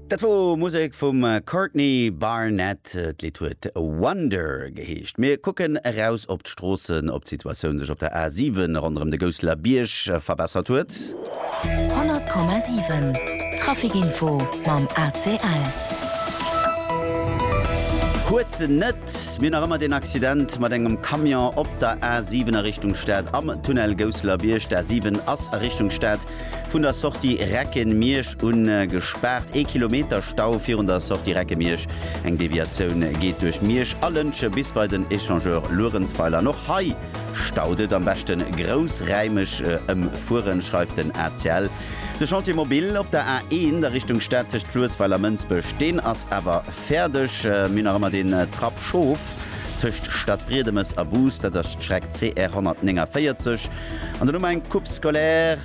Dat wor Musek vum Courtney Barnett. D'Lidd huet Wonder geheescht. Mir kucken eraus op d'Stroossen, ob d'Situatioun sech op der A 7 ronderëm de Gousseler Bierg verbessert huet. 100,7 Trafic Info mam ACL. Huet se net. Mir hunn nach ëmmer deen Accident mat engem Camion op der A 7 a Richtung Stad am Tunnel Gousseler Bierg. D'A 7 ass a Richtung Stad Vun der Sortie Recken-Miersch un gespaart. Ee Kilometer Stau virun der Sortie Recke-Miersch. Eng Deviatioun geet duerch Miersch a Lëntgen bis bei den Echangeur Luerenzweiler. An och hei staut et. Am beschten groussräimeg ëmfueren, schreift den ACL. De Chantier Mobil op der A1 a Richtung Stad tëscht Fluessweiler-Mënsbech, deen ass awer. Fäerdeg, mir hunn nach ëmmer den Trapp Schoof tëscht Stadbriedemes a Bus, dat ass d'Streck CR 149, an den Ament Coupe scolaire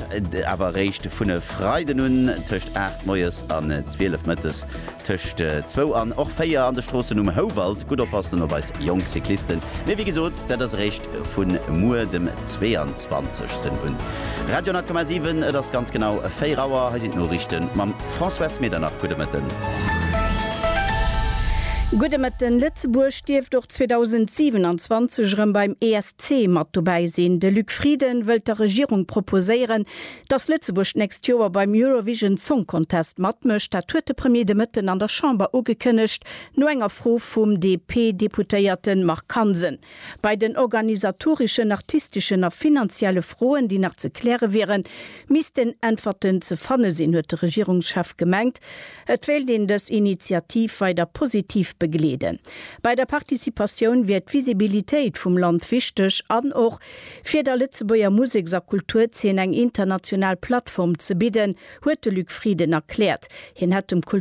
awer eréischt vun e Freiden un tëscht 8 moies an 12 mëttes, tëscht zwou an och véier an de Stroossen um Houwald. Gutt oppassen op eis jonk Cyclisten, mee wéi gesot, dat ass eréischt vu muer dem 22. un. Radio 10,7, et ass ganz genau 4 Auer, hei sinn d'Noriichte mam. Françoise Medernach, gudde Mëtten. Gudde Mëtten. Lëtzebuerg dierft och 2027 erëm beim ESC mat dobäi sinn. De Luc Frieden wëllt der Regierung proposéieren, datt Lëtzebuerg d'nächst Joer beim Eurovision Song Contest matmécht. Dat huet de Premier de Mëtten an der Chamber ugekënnegt, no enger Fro vum DP-Deputéierte Marc Hansen. Bei den organisatoreschen, artisteschen a finanzielle Froen, déi nach ze kläre wieren, missten Äntwerten ze fanne sinn, huet de Regierungschef gemengt. Et wéilt een dës Initiativ weider positiv begleeden. Bei der Participatioun wier d'Visibilitéit vum Land wichteg an och, fir der Lëtzebuerger Museks a Kulturzeen eng international Plattform ze bidden, huet de Luc Frieden erkläert. Hien hätt dem Kulturminister,